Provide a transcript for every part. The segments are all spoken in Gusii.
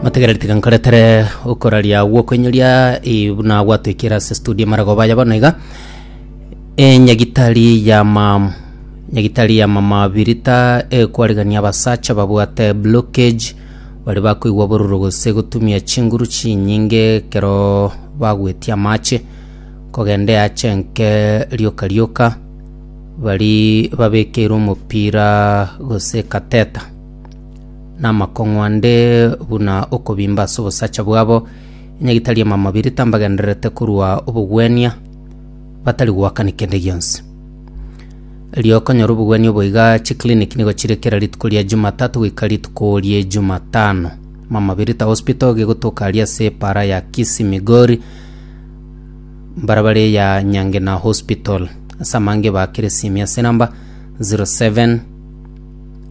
Mategereri tiga nkoretere okoraria gw'okoinyoria eh, buna gwatwikire ase studio maragoba aya bono iga Eh, nyagitari ya mam nyagitari ya mama birita eh, kwarigania abasacha babwate blockage bari bakoigwa bororo gose gotumia chinguru chinyinge ekero bagwetia amache kogenda eache enke rioka rioka bari babekeirwe omopira gose kateta namakong'u ande buna okobimba ase obosacha bwabo, enyagitari y'amamabia tambagendererete korwa obogwenia, batari goakani kende gionsi. Erio okonyora obogwenia obo iga chiclinic nigo chire kera rituko ria Jumatatu goika rituko rie Jumatano. Mama Birita Hospital gegotoka aria ase epaara ya Kisii Migori, mbarabara eya Nyangena Hospital. Ase amangeba kera esimi ase enamba 07.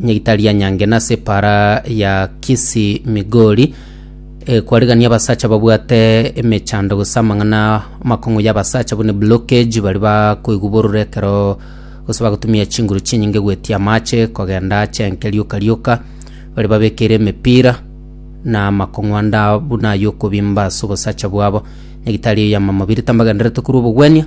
Nyegitari ya Nyange nase epara ya Kisi Migori e, kwarigania abasacha babwate emechando gose amang'ana amakong'u ya abasacha bune blockage bari bakoigwa bororo ekero gose bagotumia chinguru chinyinge gwetia amache kogenda ache enke rioka rioka bari babekeire emepira na amakong'u ande a- buna ayo okobimba ase obosacha bwabo. Nyagitari eye yamama birita mbagenderete korwa obogwenia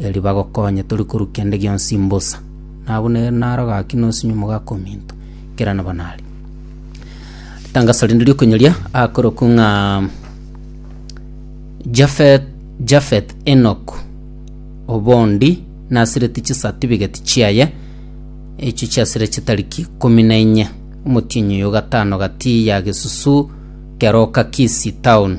erio bagokonye tori korwa kende gionsi mbosa, na abwo nere naro gaki nosinyo omogaka ominto, kera nabo nare. Ritangaso rinde riokonyoria akorokwa ng'a Jafeth, Jafeth Enoch obondi nasireti chisatifigeti chiaye, echio chiasire chitariki ikomi na inye, omotienyi oyo o gatano gati ya gesusu keroka Kisii town.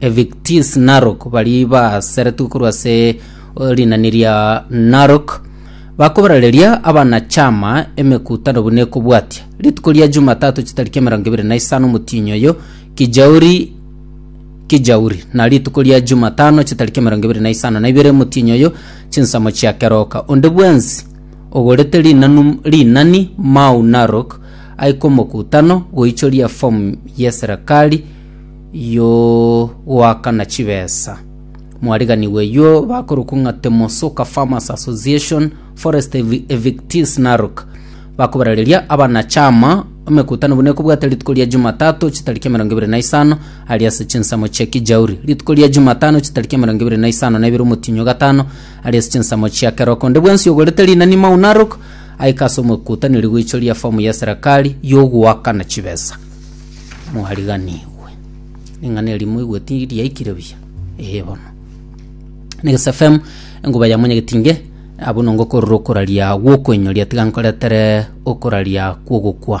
Evictis Narok, baria baaseretwe korwa ase rinani ria Narok, bakoborareria abanachama emekutano buna ekobwatia. Rituko ria Jumatatu chitariki emerongo ebere na isano omotienyi oyo, Kijauri Kijauri, na rituko ria Jumatano chitariki emerongo ebere na isano na ibere omotienyi oyo, chinsemo chia Keroka. Onde bwensi ogorete rinanu rinani Mau Narok aike omokutano goichoria efomu y'eserekari Yoo, goakana chibesa. Mwariganigwa eyio bakorokwa ng'a Temosoka Farmers Association, Forest Evi- Evictees Narok. Bakobarereria abanachama emekutano buna ekobwate rituko ria Jumatatu chitariki emerongo ebere na isano aria ase chinsemo chia Kijauri. Rituko ria Jumatano chitariki emerongo ebere na isano na ibere omotienyi o gatano aria ase chinsemo chia keroko. Onde bwensi ogorete rinani Mau Narok aike ase omokutano rigoichoria efomu y'eserekari yogoakana chibesa. Mwariganigwe. Ring'ana eri moigweti riaikire buya? Ee bono. Next FM enguba ya monyegetinge abwo nongo korora okoraria gwokoinyoria tiga nkoretere okoraria kwogokwa.